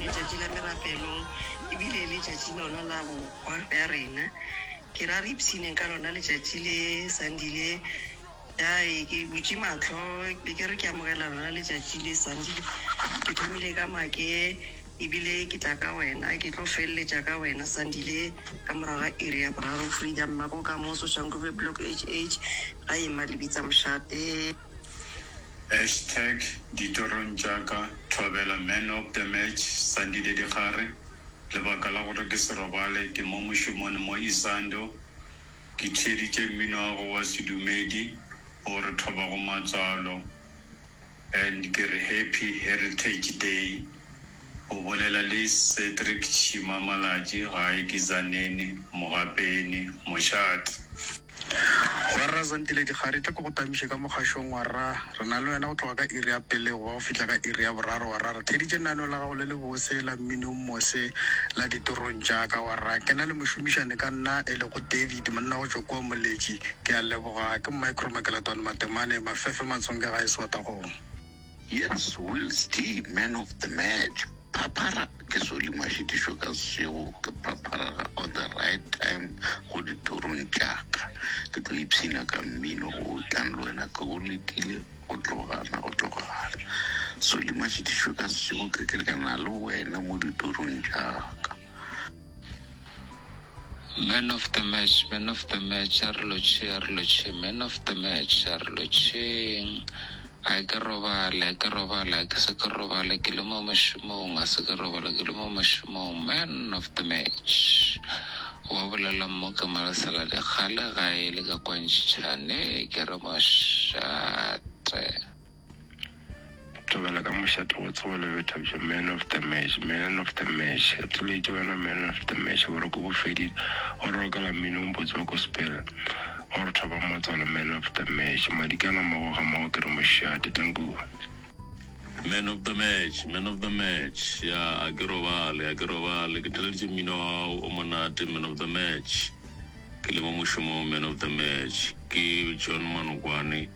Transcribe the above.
Letšatši la merapelo e bile letšatši lona la bohwa bja rena. Ke ra re ipshineng ka lona letšatši le, Sunday le. Ya e, ke butše mahlo be ke re ke amogela lona letšatši le, Sunday le. Ke thomile ka make e bile ke tla ka wena, ke tlo feleletša ka wena, Sunday le, ka morago ga iri ya boraro. Freedom Makokamoso, Shanguve Block HH, ga ema Lebitsamošate. Hashtag Ditorong tša ka Thobela Man of the Match Sandile Dikgare Lebaka la gore ke se robale ke mo mošomone mo Isando Ke theeditše mmino wa go wa sedumedi o re thoba go matswalo And ke re Happy Heritage Day O bolela le Cedric Tšhima Malatši gae ke Zanene, Mogapeni, Mošate. Rra Zandile Dikgari, tla ke go tamiše ka mokgašong wa rra. Re na le wena go tloga ka iri ya pele go ba go fihla ka iri ya boraro wa rra. Re theeditše leano la gago le lebose la mmino o mose la Ditorong tša ka wa rra. Ke na le mošomišane ka nna e lego David, monna go tšwa kua Moletši. Ke a leboga. Ke Micro Makeletwane Matemane, Mafefe Matshonge gae Swatagong. Jens Wills T Man of the Match Phaphara ke Solimo a šitišwe ka sešego Ke phapharela on the right time Go dithorong tša ka Ke tlo ipshina ka mmino Go tlang le wena Ke go letile go tlogana go tlogana Solimo a šitišwe ka sešego Ke kerekana le wena mo dithorong tša ka Man of the match, man of the match, a re lotšhe, a re lotšhe, man of the match, a re lotšheng. A ke robale, a ke robale, a ke se ke robale, ke le mo mošomong, a se ke robale, ke le mo mošomong, man of the match. Wa bolela mo ke mo lesela dikgale ga e le ka kwantšhane, ke re mošate. Tobela ka mošate go tsogo le bethabja man of the match man of the match atulete wena man of the match boroko bo fedile o re okela mmino mpotse wa gospel o re thoba motswalo man of the match madikana mago ga mago ke re mošate tanku Man of the match, man of the match ya a ke robale, a ke robale ke theleditše mmino wa gago o monate man of the match ke le mo mošomong man of the match ke John Manokwane.